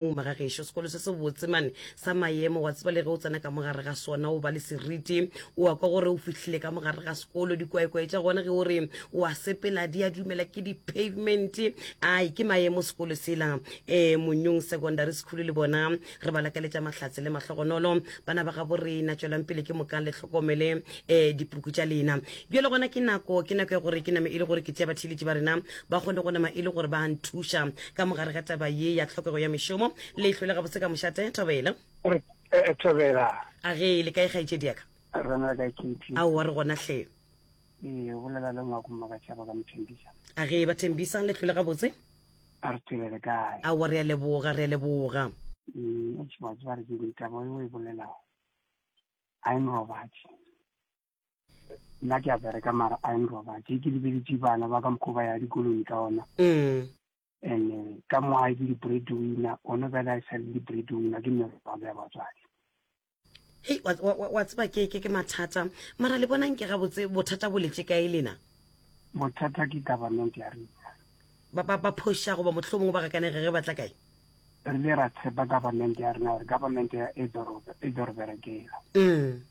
Mma ga gešo sekolo se se botse mane sa maemo wa tseba le ge o tsena ka mogare ga sona o ba le seriti o a kwa gore o fihlile ka mogare ga sekolo dikwaekwae tša gona ge o re o a sepela di a dumela ke di-pavement ai ke maemo sekolo sela um eh, monyong secondary school le bona re ba lakaletša mahlatse le mahlogonolo bana ba gabo rena tswelang pele ke mokang le tlhokomele um dipuku tša lena Bjale gona ke nako, ke nako ya gore ke name e le gore ke tšea batheeletši ba rena ba kgone go nama e le gore ba a nthuša ka mogare ga taba ye ya tlhokego ya mešomo. Le e hlwele gabotse ka mošate, Thobela? Re, eh, Thobela. A ge le kae kgaetšedi ya ka? Re na le kae Katie? Aowa, re gona hle. Ee, o bolela le ngwako mma ka tšhaba ka mothembisa. A ge ba thembisa, le hlwele gabotse? A re tswele le kae? Aowa, re a leboga, re a leboga. Mm, eish, wa tseba re ke ditaba eo e bolelago. I'm Robert. nna ke a bereka mara a eng robatse ke lebeletse bana ba ka mokgwa ba ya dikolong ka ona mm. and eh, ka mo a ke di-bread winner one bele a e sa le di-bread winner ke nne robatse ya batswadi hei wa tseba ke ke mathata mara le bonang ke gabotse bothata bo letse kae lena bothata ke government ya rena ba phoša goba motlho mongwe ba gakanege ge ba tla kae re le ra tshepa government ya rena gore government ya e doro berekela mm.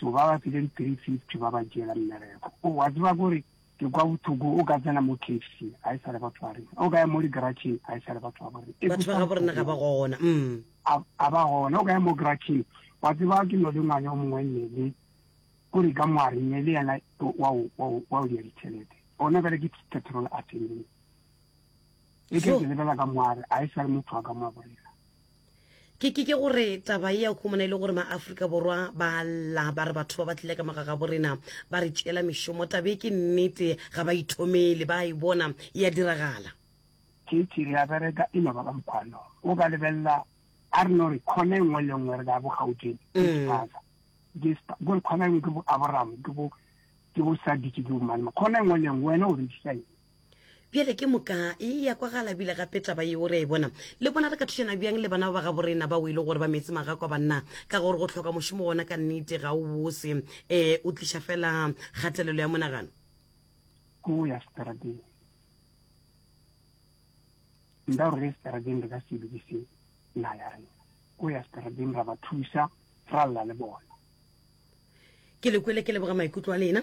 So ba ba file di 350 ba ba diela mmereko. O a tseba gore ke kwa bothoko o ka tsena mo KFC a e sale batho ba rena. O ka ya mo digaratšheng a e sale batho ba bo rena. Batho ba ga bo rena ga ba gona. Mm. A, a ba gona. O ka ya mo garatšheng. Wa tseba ke no le ngwana o mongwe nele o re ka moare nele yena wa o wa o wa o ya ditšhelete. Ona bere ke petrol a tseneng. E ke lebela ka moare a e sale motho a ka mo borena. ke ke ke gore taba e ya khomona e le gore maaforika borwa ba lla ba re batho ba ba tlile ka mogaga bo rena ba re tšeela mešomo tabe ke nnete ga ba ithomele ba e bona e ya diragala tšetši re a bereka e no ba ka mokgwano o ka lebelela a re no re kgona e nngwe le nngwe re ka bogautšeng dispaza mm. gore kgona e nngwe ke bo aboramo ke bo ke bo sadiki ke bomane kgona e nngwe le nngwe wena o re disaeng bjale ke moka e ya kwa ga labile gape taba yeo re a e bona le bona re ka thušana bjang le bana ba ba gabo rena ba o e le gore ba metse maga kwa banna ka gore go tlhoka mošomo wona ka nnete ga o bose um o tliša fela kgatelelo ya monagano o ya strateng nda gore re strateng re ka se lokise na ya rena o ya strateng ra ba thusa ra lla le bona ke lekwele ke leboga maikutlo a lena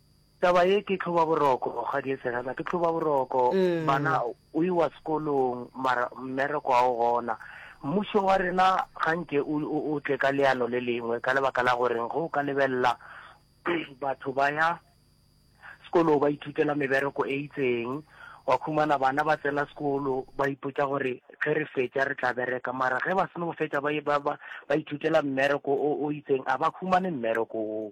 Taba ye ke tlhoba boroko ga die serena ke tlhoba boroko bana o iwa sekolong mara mmereko a o gona mmušo wa rena ga nke o tle ka leano le lengwe ka lebaka la goreng go ka lebelela batho ba ya sekolo ba ithutela mebereko e itseng wa khumana bana ba tsena sekolo ba ipotsa gore ge re fetša re tla bereka mara ge ba seno go fetša ba ba ba ithutela mmereko o itseng a ba khumane mmereko o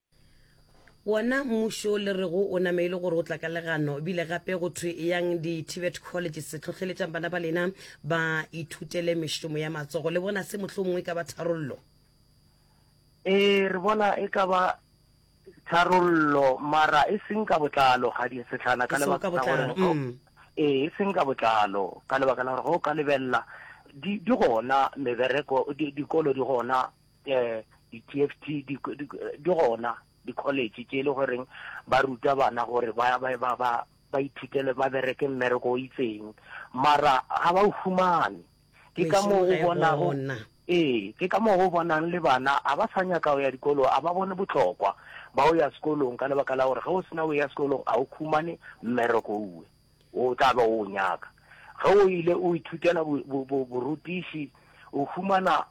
Wona mmušo o le rego o nameile gore o tla ka legano, ebile gape go thwe eyang di-tibet colleges hlohleletšang bana ba lena ba ithutele mešomo ya matsogo. Le bona se mohlomongwe e ka ba tharollo? Ee, re bona e ka ba tharollo, mara e seng ka botlalo, kgadie Setlhana, ka lebaka la gore mm. ee, e seng ka botlalo, ka lebaka la gore go ka lebelela di gona mebereko, dikolo di gona um di-tft di gona di-college tše e le goreng ba ruta bana gore ba ba ba ba ba ithutele ba bereke mmereko o itseng mara ga ba o fumane ke ka moo o bonago ee ke ka moo go bonang le bana a ba sa nyaka go ya dikolo a ba bone botlhokwa ba o ya sekolong ka lebaka la gore ge o sena o ya sekolong a o khumane mmereko uwe O tla be o o nyaka. Ge o ile o ithutela bo, bo, bo, borutiši, o humana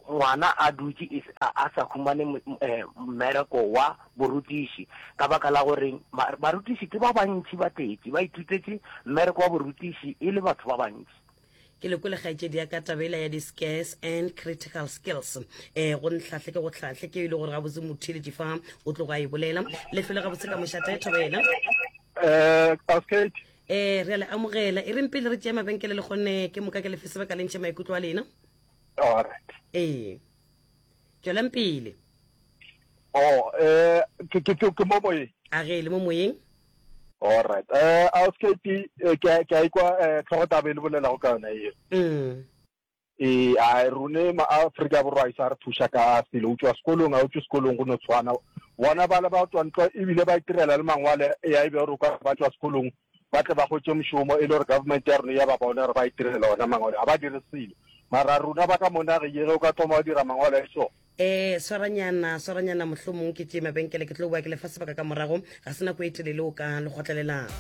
ngwana a dutše e se, a, a sa humane m, m, eh, mmereko wa borutiši. Ka baka la gore ma, barutiši ke ba bantši ba tletše, ba ithutetše mmereko wa borutiši e le batho ba bantši. ke le kwele kgaetšedi ya ka taba ela ya di-scares and critical skills eh go ntlhahle ke go tlhahle ke e le gore gabotse motheletši fa o tlogo a e bolela lefelo gabotse ka mošata e thobela eh re a le amogela e reng pele re tšea mabenkele le kgonne ke moka ke lefe sebaka le ntšhe maikutlo a lena ee tswelang pele oh, eh, ke mo moyeng a ge e le mo moyeng Alright Auskate ke a ikwa tlhogo taba e le bolelago ka yona eo. Mm. ee a rune ma Afrika borwa a isa re thuša ka selo utswa sekolong a utswa sekolong go no tshwana bona ba le ba tswa ntwa ebile ba itirela le mangwale ya ebe gore ka ba tswa sekolong ba tle ba gotse moshomo e le gore government ya rona ya ba bona gore ba itirela ona mangwale ga ba dire selo mara runa ba ka monage yege o ka thoma wa dira mangwale a e sone Ee, swaranyana, swaranyana, mohlomong ke tšee mabenkele, ke tlo boa ke lefa sebaka ka morago, ga se nako e telele o ka le gotlelelang.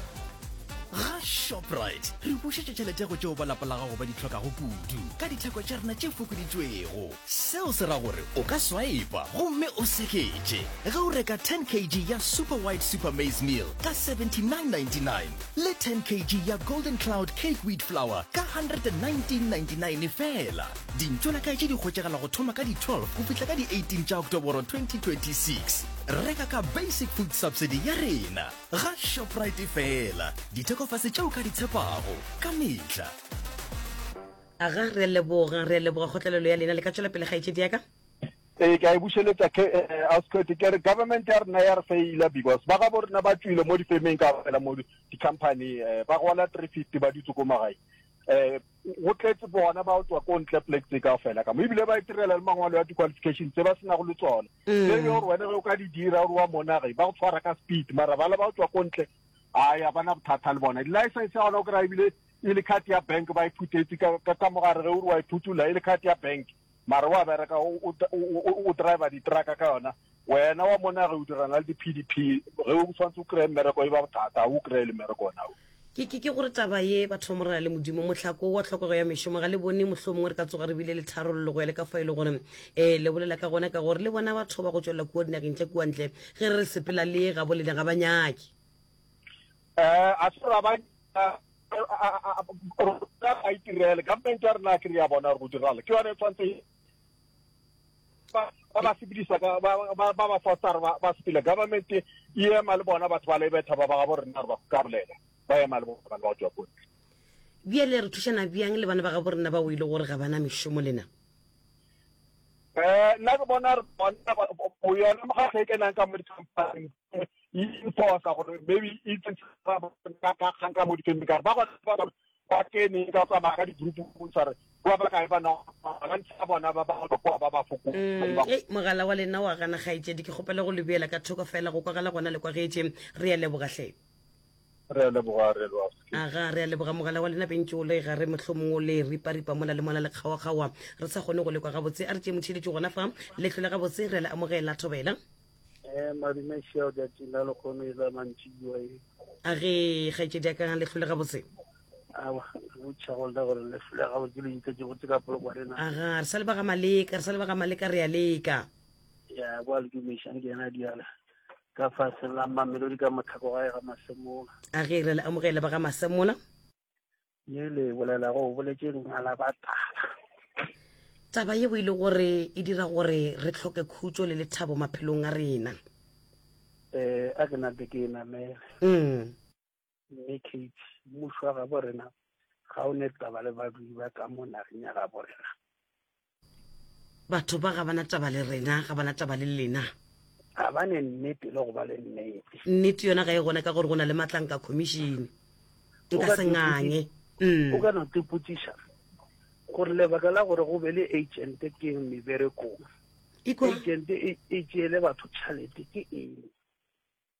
Ga Shoprite re bušetša tšhelete go tšeo ba lapa la gago ba di hlokago kudu ka ditheko tša rena tše fokoditšwego. Seo se ra gore o ka swaipa gomme o seketše ge o reka 10 kg ya Super White Super Maize Meal ka 79.99 le 10 kg ya Golden Cloud Cake Wheat Flour ka 119.99 fela. Dintšo la kaetše di hwetšagala go thoma ka di-12 go fihla ka di-18 tša Oktoboro 2026. Reka ka Basic Food Subsidy ya rena ga Shoprite feela. Dithekofase tšeo ka di tshepago ka mehla. Aga, re a leboga, re a leboga kgotlelelo ya lena. Le ka tšwela pele kgaetšedi ya ka. Ee, ke a e bušeletsa ke eh, Ascot ke re government ya rena ya re faila because ba gabo rena ba tswile mo difemeng ka fela mo di-company eh, ba gola three fifty ba dutse ko magae eh go tletse bona ba tswa ko ntle plek tse kao fela ka mo ebile ba itirela le mangwalo ya di-qualification tse ba sena go le tsone mm. le yo gore wena ge o ka di dira gore wa monage ba go tshwara ka speed mara bala ba tswa ko ntle a ya bana bothata le bona di-license ya gona o kry-a ebile e le card ya bank ba e phutetse ka mogare ge o re wa e phutula e le card ya bank Mare wa bereka o, o, o, o driver ditraka ka yona wena wa mona ge o dirana le di-pdp ge o tshwanetse o kry-e mmereko e ba bothata ga o kry-e le mmereko ona o ke ke ke gore taba ye batho ba morena le modimo motlhako wa tlhokego ya mešomo ga le bone mohlo mongwe re ka tsoga re bile le tharololo go ya le ka fa e le gore um le bolela ka gona ka gore le bona batho ba go tšwelela kua dinageng tša kuantle ge re re sepela le ga bolena ga ba nyake eh a se ra ba a itirele government ya rena ke re ya bona go dirala ke yone e tshwanetse ba ba sepedisa ka ba ba ba foster ba ba sepile government e ema le bona batho ba le betha ba ba ga bo rena re ba ka bolela ba ema le bona ba tswa go bjale re thušana bjang le bana ba ga bo rena ba o ile gore ga bana mešomo lena eh nna ke bona re bona go yona mo ga se kenang ka mo di company infosa gore maybe e ka mo dikene kare ba gona ba kene ka tsamaya ka di-group sa re ba ba kae bana ba ntse ba bona ba ba kwa ba ba foko mm, eh, mogala wa lena wa gana gaetsedi ke kgopela go lebela ka thoko fela go kwagala gona le kwagetse re ya lebogatlhe re leboga re lwa aga re a leboga mogala wa lena bentse o le gare mohlomong o le riparipa mona le mona le kgaokgaoa re sa kgone go lekwa gabotse a re tšee motšheletše gona fa letlho le gabotse re le amogela thobela Eh, madume šeo jatsing la lekgono e la mantši bua e a re kgaetšedi a kang le tlhole gabotse botšhagolda gore le tlhole gabotse le itse ke botse ka poloko rena aga re sa lebaga maleka re sa lebaga maleka re ya leka ya kwa le dumešang ke yena diala ka faseng la mamelodi ka mothako gae ga masemola a re re le amogele ba ga masemola ye le bolelago o boletše lena la batala taba ye o ile gore e dira gore re tlhoke khutso le lethabo maphelong a rena eh a ke nate ke e namele mm. mme kate mmušo wa gabo rena ga o ne taba le badudi ba ka mo nageng ya gabo rena batho ba ga bana taba le rena ga bana taba le lena ga ba ne nnete le go ba le nnete nnete yona ga e gone ka gore go na le matlanka commission nka se nganye mm. o ka no tepotšiša gore lebaka la gore go be le agente ke eng meberekong agente e tšeele batho tšhalete ke eng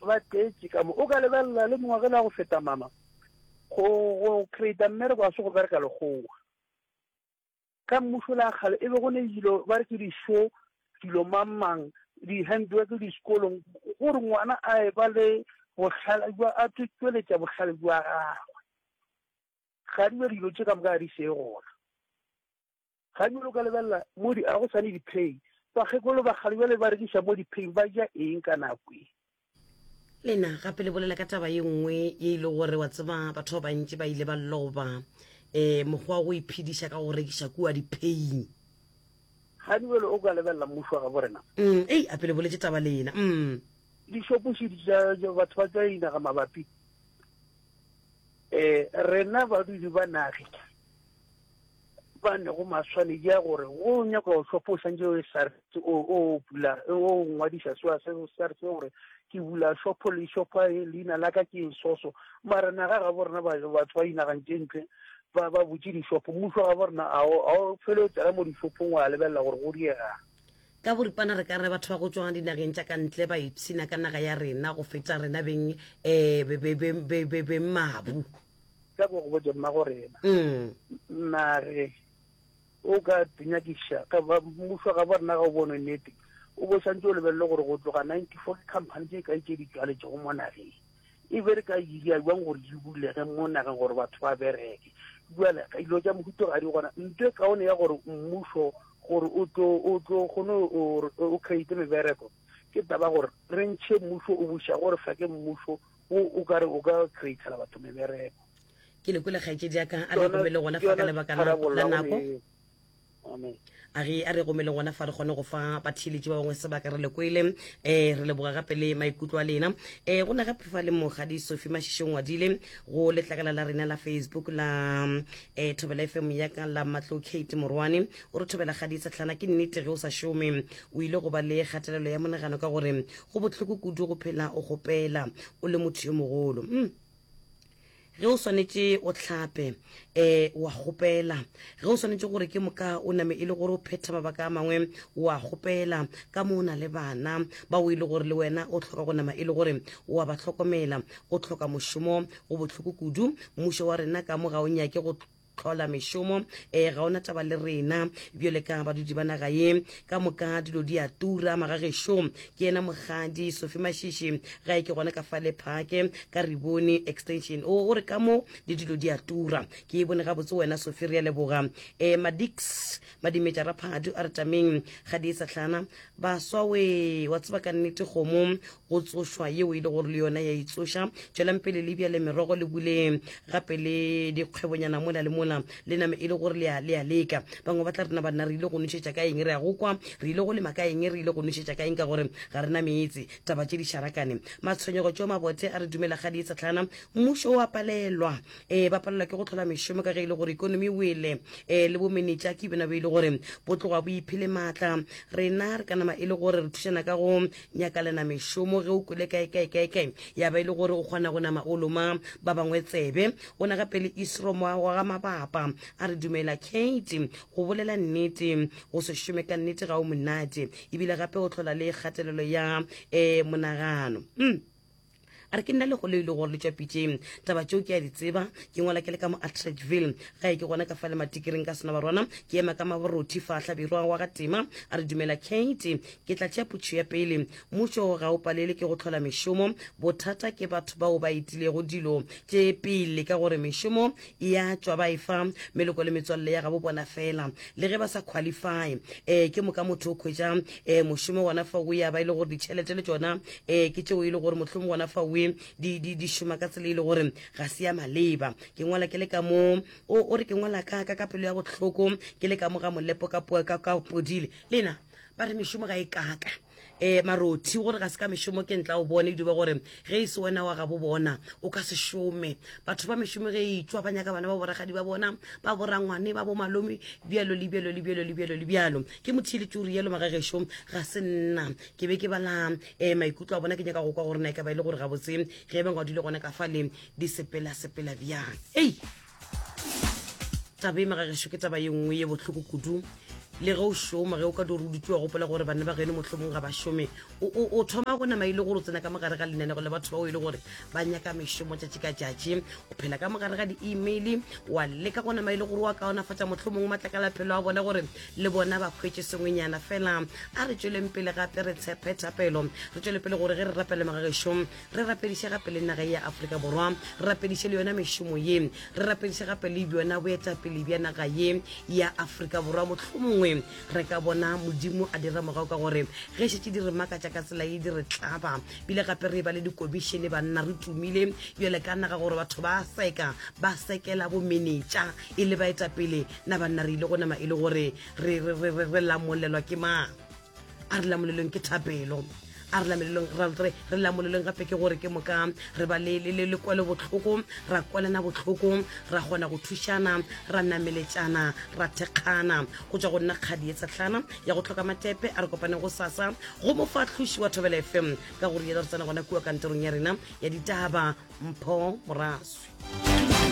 ba tletše ka mo. O ka lebelela le mongwe ge le ya go feta mama go, go creata mmereko ga se go bereka lekgowa. Ka mmušo le a kgale e be go ne dilo ba re ke di-show, dilo mang mang, di-handwork diskolong gore ngwana a e ba le bohlale jwa a tlo tšweletša bohlale jwa gagwe. Ga di be dilo tše ka moka ga di seye gona. Gabjale o ka lebelela mo di, a go sane dipheng. Bakgekolo ba kgale bjale ba rekiša mo dipheng, ba ja eng ka nako e? Lena gape le bolela ka taba ye nngwe ye e le gore wa tseba batho ba bantši ba ile ba loba um mokgwa wa go iphediša ka go rekiša kua dipheying. Gabjale o ka lebelela mmušo wa gabo rena. Mm, ei, ape le boletše taba lena. Mm. Dišopošedi tša tša batho ba tša dinaga mabapi, um rena badudi ba nage. ba nego maswane ya gore o nyaka go hlopha o santse o SARS o o bula o ngwadisa swa se SARS gore ke bula shopho le shopha e leina la ka ke soso mara naga ga borena batho ba inagantse ntle ba ba butse dishopho mmuso ga borena a o fele o tsena mo dishophong wa lebelela gore go diega ka boripana re ka re batho ba go tswang dinageng tša ka ntle ba ipshina ka naga ya rena go feta rena beng um beng mabu ka go go botša mma gore ena mmage o ka dinyakiša ka ba mmušo ga bona ga o bone nnete o bo santse o lebelele gore go tloga ninety four ke company tse ka itse di tswaletse go mo nageng e be re ka iria jwang gore di bulege mo nageng gore batho ba bereke jale ka dilo tsa mohuto ga di gona nto e kaone ya gore mmušo gore o tlo o tlo gone o create mebereko ke taba gore re ntšhe mmušo o buša gore fa ke mmušo O, o ka re o ka createla batho mebereko. Ke le kwele kgaetšedi ya ka, a re romele gona fa ka lebaka la, la nako. Amen. A re, a re romele gona fa re kgone go fa batheeletši ba bangwe sebaka re le kwele. Eh, re leboga gape le maikutlo a lena. Eh, go na gape fa le Mokgadi Sophie Mašiši o ngwadile go letlakala la rena la Facebook la eh, Thobela FM ya ka la Matlo Kate Morwane. O re thobela kgadi setlhana ke nnete ge o sa šome o ile go ba le kgatelelo ya monagano ka gore Go bohloko kudu go phela o kgopela o le motho yo mogolo. Mm. ge o swanetše o hlape um wa kgopela ge o swanetše gore ke moka o name e le gore o phetha mabaka a mangwe wa kgopela ka mo o na le bana ba o e le gore le wena o tlhoka go nama e le gore wa ba tlhokomela o tlhoka mošomo go bohloko kudu mmušo wa rena ka mo ga o nyake go hlola mešomo um ga ona taba le rena bjole ka badudi ba naga ye ka moka dilo di a tura magagešo ke yena mogadi sofi mašiši ga e ke gona ka fa lephake ka re bone extension o o re ka mo le dilo di a tura ke e bone gabotse wena sofi re ya leboga um eh, madix madimetša raphadu a re tameng ga di e sa tlhana baswa we wa tseba ka nnete kgomo go tsošwa yeo e le gore le yona ya itsoša tšwelang pele le bjale merogo le buleng gape le dikgwebonyana mola le mola le name e le gore le a leka bangwe ba tla rena banna re ile go nošetša ka eng re ya go kwa re ile go lema ka eng re ile go nošetša ka eng ka gore ga re na meetse taba tše di šarakane matshwenyego tšeo mabothe a re dumela ga di e tsatlhana mmušo wa palelwa um ba palelwa ke go tlhola mešomo ka ge e le gore ikonomi wele um le bomenetša ke bena be e le gore bo tloga bo iphele maatla rena re ka nama e le gore re thušana ka go Nyaka le na mešomo ge o kwele kaekaekaekae ya ba e le gore o kgona go nama o loma ba bangwe tsebe. O na gape le Isro moa wa ga Mabapa a re dumela Kate, go bolela nnete go se šome ka nnete ga o monate ebile gape o hlola le kgatelelo ya um monagano. Um. a re ke nna legolo e le gore le tšwa pitšeng taba tšeo ke a di tseba ke ngwala ke le ka mo atredville ga e ke gona ka fale matikiring ka sena barwana ke ema ka maborothy fa hlabirwa wa ga tema a re dumela kate ke tla tšea putšho ya pele mmušo ga o palele ke go tlhola mešomo bothata ke batho bao ba etilego dilo tše pele ka gore mešomo ya tšwa ba e fa meloko le metswalle ya gabo bona fela le ge ba sa qualify um ke moka motho o khwetša um mošomo gona fa o ya ba e le gore ditšhelete le tšona um ke tšeo e le gore mohlomong gona fa oe di, di, di šoma ka tsela e le gore ga se ya maleba ke ngwala ke le ka mo o, o re ke ngwala ka ka ka pelo ya bohloko ke le ka mo ga molepo ka, po- ka, ka podile lena ba re mešomo ga e kaka e marothi gore ga se ka mešomo ke ntla o bone dube gore ge e se wena wa gabo bona o ka se šome batho ba mešomo ge e itswa ba nyaka bana ba boragadi ba bona ba borangwane ba bomalome bjalo le bjalo le bjalo le bjalo le bjalo ke motho e le turi yalo magagešo ga se nna ke be ke bala um maikutlo a bona ke nyaka go kwa gore na e ka ba e le gore gabotse ge e beng wa dule gona ka fa le di sepela sepela bjang ei taba e magagešo ke taba ye nngwe ye bohloko kudu le ge o šoma ge o ka dore o dutse wa gopola gore banna ba geno motlhomong ga ba šome o thoma go nama e le gore o tsena ka mogare ga lenanego le batho bao e le gore ba nyaka mešomo tšatši ka tšatši o phela ka mogare ga di-email wa leka go nama e le gore wa kaonafatša motlhomong matlakalaphelo a bone gore le bona ba kgwetse sengwenyana fela a re tsweleng pele gape re tshepe thapelo re tswele pele gore ge re rapele magagešong re rapediše gape le naga ya aforika borwa re rapediše le yona mešomo ye re rapediše gape le bjona boetapele bja naga ye ya aforika borwa mohlomongwe re ka bona modimo a dira morago ka gore ge šetše di re makatša ka tsela ye di re tlaba bile gape re e ba le dikobišene banna re tumile bjale ka naga gore batho ba seka ba sekela bomenetša e le baetapele na banna re ile go nama e le gore re lamolelwa ke mang a re lamolelong ke thapelo a re lamelelong re re lamolelong gape ke gore ke moka re ba le lekwelo botlhoko ra kwalana botlhoko ra kgona go thušana ra nameletšana ra thekgana go tswa go nna kgadi e tsetlhana ya go tlhoka matepe a re kopane go sasa go mo fa tlhoši wa thobela fm ka gore yela re tsena gona kua kantorong ya rena ya ditaba mpho moraswi